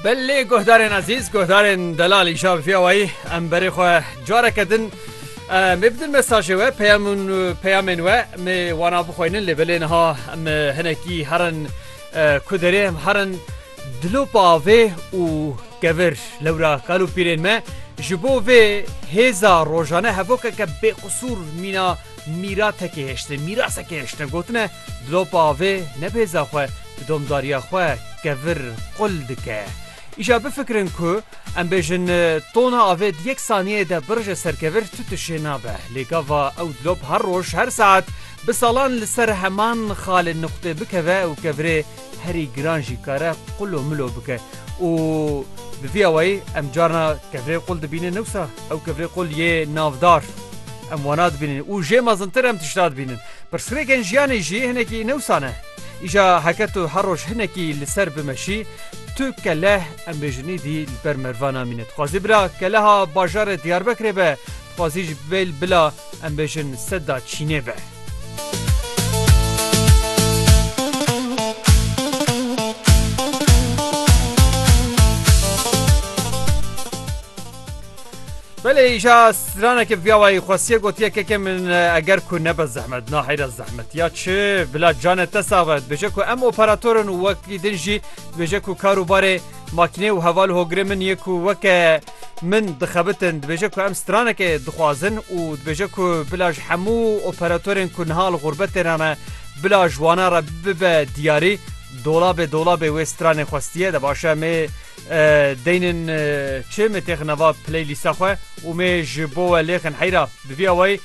Belê guhdarên ezîz guhdarên delalî şabifiya wayî em berê xwe careke din me bidin mesajê we peyamûn peyamên we me wana bixweynin lê belê niha em hinekî herin ku derê em herin dilopa avê û kevir lewra kal û pîrên me ji bo vê hêza rojane hevokeke bêqisûr mîna Mîratekê hiştin, mîrasekê hiştin gotine Dilop avê ne bêza xwe di domdariya xwe kevir qul dike. Îşa bifikirin ku em bêjin tona avê di yek saniyeyê de birije ser kevir tu tişê nabe. Lê gava ew dilop her roj her saet bi salan li ser heman xalê nuqtê bikeve û kevirê herî giran jî kare qul û milo bike û bi vî awayî em carna kevirê qul dibînin newsa ew kevirê qul yê navdar em wana dibînin û jê mezintir em tişta dibînin. Pirsgirêkên jiyanê jî hinekî newsa ne. Îja heke tu her roj hinekî li ser bimeşî tu keleh em bêjin îdî li ber merva namîne. Dixwazî bila keleha bajarê Diyarbekirê be. Xwezî ji bel bila em bêjin seda çînê be. Belê îşa straneke viyawayî xwestiye gotiye keke min eger ku nebe zehmet na heyra zehmet ya çi bila cane te savet bêje ku em operatorin û wekî din jî bêje ku karûbarê makînê û heval hogirê min yê ku weke Min dixebitin dibêje ku em stranekê dixwazin û dibêje ku bila ji hemû operatorên ku niha li xûrbetê re ne bila ji wana re bibe diyarî dolabê dolabê wê stranê xwestiye de baş e mê deynên çi mê têxine va playlîsta xwe û mê ji bo we lêxin heyra bi vî awayî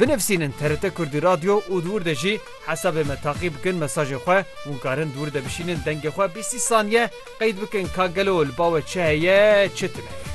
Binivîsînin TRT Kurdî Radyo û di wir de jî hesabê me taqî bikin mesajê xwe. Hûn karin di wir de bişînin dengê xwe bîstî saniye qeyd bikin ka gelo li ba we çi heye çi tune ye.